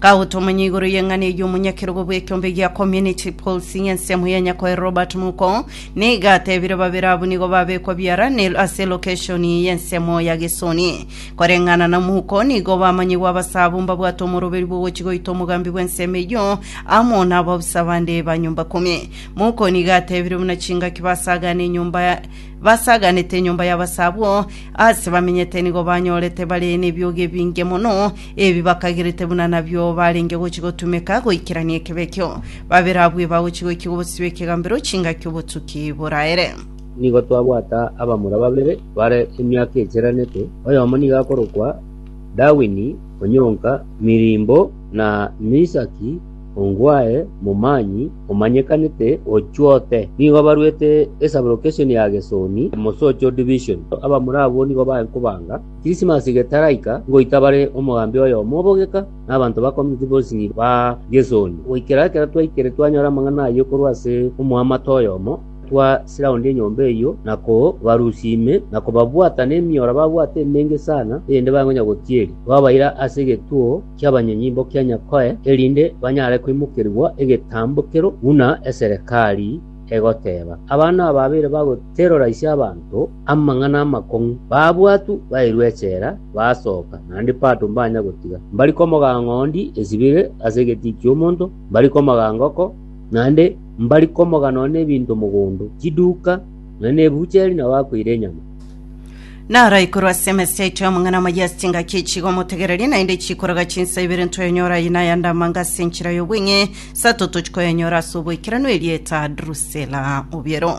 Gaotomanya igoro y'eng'ana eyio omonyakerogo bw'ekeombe gia Community Pulse ng'a ensemo ya Nyakoe Robert Muko nigo atebire babere abwo nigo babekwa biara ne ase location y'ensemo ya Gesoni. Koreng'ana na Muko nigo bamanyigwe abasabo mbabwate omoroberi bw'ogochi goita omogambi bw'ensemo eyio amo nababusa bande ba nyomba kumi. Muko nigo atebire buna chingaki basagane enyomba basaganete enyomba y'abasabo ase bamenyete nigo banyorete bare n'ebiogi ebinge mono Ebi bakaigerete buna nabio barenge gochia gotumeka goikerania ekebekio. Babere abwo eba gochia goikigwa obosio bw'ekegambero chingaki obotuki boraere. Nigo twabwata abamura babere bare emiaka eicheranete, oyomo nigo akorokwa Darwini, onyonka mirimbo, na Misaki Ongwae, momanyi omanyekanete o chwote. Nigo barwete esabulokeshoni ya Gesoni, Mosocho Division. Abamura abwo nigo baye nkobanga. Krisimasi getaraika, ngoita bare omogambi oyomo obogeka, na abanto bakomiti bonsi niba Gesoni, goikera ekero twaikire twanyora amang'ana ayio korwa ase omoamate oyomo, twasiraundia enyomba eyio, na kobarusia ime, na kobabwata nemioro babwate emenge sana, erinde bangonya gotieri. Twabaira ase egetuo ki'abanyonyimbo kia Nyakoe, erinde banyare koimokerigwa egetambokero buna eserekari egoteba. Abana aba babere bagoterora ise abanto, Amang'ana amakong'u, babwatu bairwe echela, basoka, naende Pato mbanya gotiga. Mbari komoga ng'ondi esibire ase egetii ki'omonto, mbari komoga ngoko, naende mbari komoga nonya nebinto mogondo, chiduka, nonya nebucheri na bakoira enyama. Naraikuru ase emesa yaito y'amang'ana amaya ase engaki ye chiga omotegererie, naende chikoroga chinsa ibere ntoyanyora aye na ayande amanga ase enchera y'obweng'e, sato tochikoyanyora ase oboikeranu erieta Drusela. Obiero.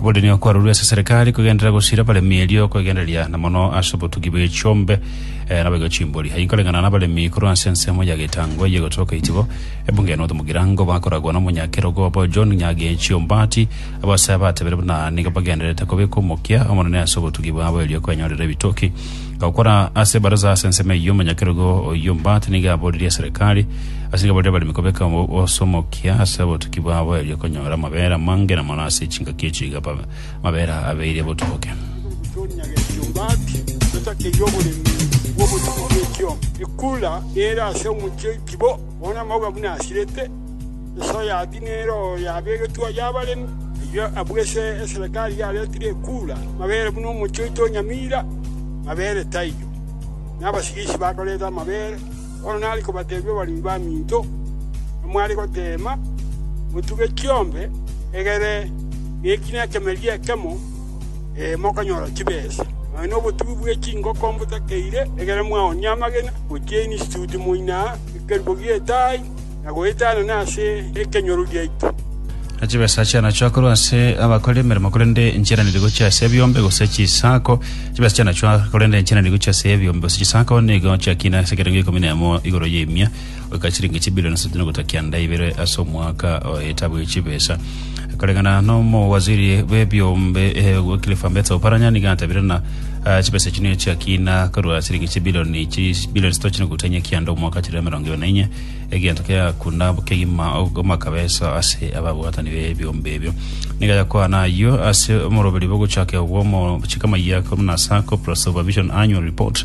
Oborini okwarorwa ase serikali kogenderera gosira abaremi erio kwegendereria na mono ase obotugi bwe chiombe eh, na boigo chimbori. Aye nkoreng'ana na abaremi korwa ase ensemo ya getango eye gotoka itibo. Ebunge North Mugirango bakoragwa na omonyakerogo obo John Nyagechi Ombati abasaya batebire buna nigo bagendererete kobeka omokia omonene ase obotugi bwabo erio kwenyorera ebitoki Gokora ase ebaraza ase ensemo eyio omonyakerogo oyio Mbati nigo aboririe eserekari ase nigo aborire abaremi kobeka osomokia ase obotuki bwabo erio konyora amabera amange na mono ase chingaki echio iga amabera abeire botuboke. Tonya getio Mbati totakeire oboremi bw'obotuki bw'ekiombe. Ekura ere ase omochie oikibo, bono amauga buna asirete. Ase oyatini nere oyoabegetwe oyo abaremi, ayio abwo ase eserekari yaretire ekura, mabere buna omochie oito o nyamira, mabere taiyo. Na abasigisi bakorete amabere, bono nare kobatebia abaremi baminto, Namware goteema, motuge chiombe, egere neki nekemerie ekemo, ee, mokonyora chibesa, nonya nobotugi bwe chingoko mbotakeire, egere mwaonie amagena, gochia instituti moina ekerubo gi'etaai. na goeta anene ase ekenyoro giaito. Na chibesa chiana chiakorwa ase abakore emeremo, korende nchiana nigo gochia ase ebiombe gose chisaako. Chibesa chiana chiakorwa, korende nchiana nigo gochia ase ebiombe gose chisaako, nigo chiakina ase ekerengo gia ikomi na emo igoro y'emia, goika chiringi chibilioni isatu na ogotakia nda ibere ase omwaka o etabu ye chibesa. Koreng'ana nomowaziri bw'ebiombe eh, Wycliffe Ambetsa Oparanya nigo atabire ng'a ah, chibesa echi nigo chiakina korwa siringi chibilioni chi- bilioni sito chinuguta enye kianda omwaka chire emerongo ebere na inye egento kiagakunda kegima og- amakabesa ase ababwatani b'ebiombe ebio nigo yakwana ayio ase omoroberi bogochaka obwo omo chikama ya korwa nasa Corporate Supervision Annual Report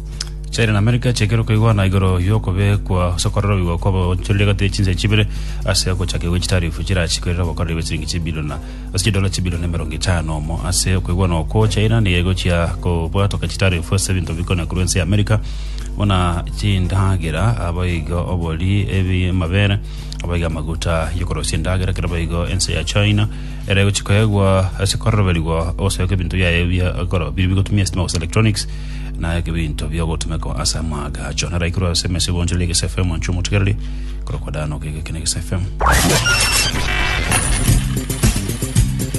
China na Amerika chiakerwa koigwana igoro y'okobekwa ase okororoigwa kw'abaonchoreria egati ye chinse chibere ase ogochakigwa gwe chitarifu chirachikwe erire obokoreri bwe chiringi chibiliona ase chidola chibilioni emerongo etano omo ase okoigwana okwo China nigo egochia kobwatoka chitarifu ase ebinto bikonia korwa ense ya Amerika buna chindagera abaiga obori ebi amabere abaiga amaguta y'okorosia endagera kere baigo ense ya China ere egochia koegwa ase kororoberigwa ogosoeka ebinto biaye bia goro biri bigotumia sitima gose electronics na eke binto biogotumekwa ase amaagacho. Naro aikerwe ase emesa ebonchorere ya Gese FM anchwe omotigereri korokwa Dan oke geke na Gese FM.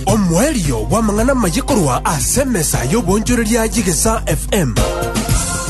Omoerio bw'amang'ana amaye korwa ase emesa y'obonchoreria y'Egesa FM.